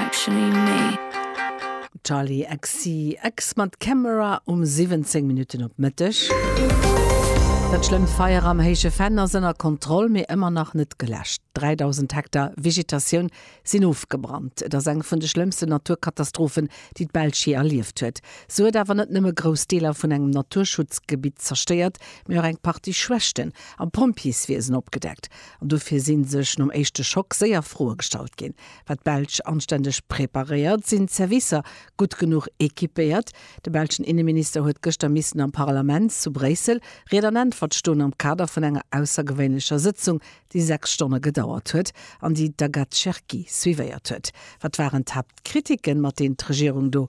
actually me. Charli XCX mat Camera um 17 Minutten op Mëtteg. Dat schlëmmt Feier am Héiche Venn ass ënner Kontroll, mee ëmmer nach net geläscht. 3.000 Hektar Vegetatioun sinn ofgebrannt. Et ass eng vun de schlëmmsten Naturkatastrophen, déi d'Belsch jee erlieft huet. Se huet awer net nëmme grouss Deeler vun engem Naturschutzgebitt zerstéiert, mee och eng Partie Schwächten am Pompjeeswiesen opgedeckt. An dofir si sech nom éischte Schock séier Froe gestallt ginn. Wat d'Belsch anständeg preparéiert? Sinn d'Servicer gutt genuch equipéiert? De belschen Inneminister huet gëschter missen am Parlament zu Bréissel Ried an Äntwert stoen am Kader vun enger aussergewéinlecher Sëtzung, déi 6 Stonne gedauert huet an déi d'Agathe Cherki suivéiert huet. Wat waren d'Haaptkritiken, mat deenen d'Regierung do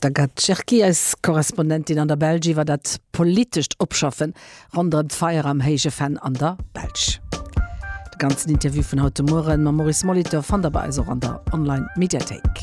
D'Agathe Cherki, eis Korrespondentin an der Belsch iwwer dat politescht Opschaffen ronderëm d'Feier am Héije Venn an der Belsch. De ganzen Interview vun haut de Mueren mam Maurice Molitor fannt der bei eis och an der Online-Mediathéik.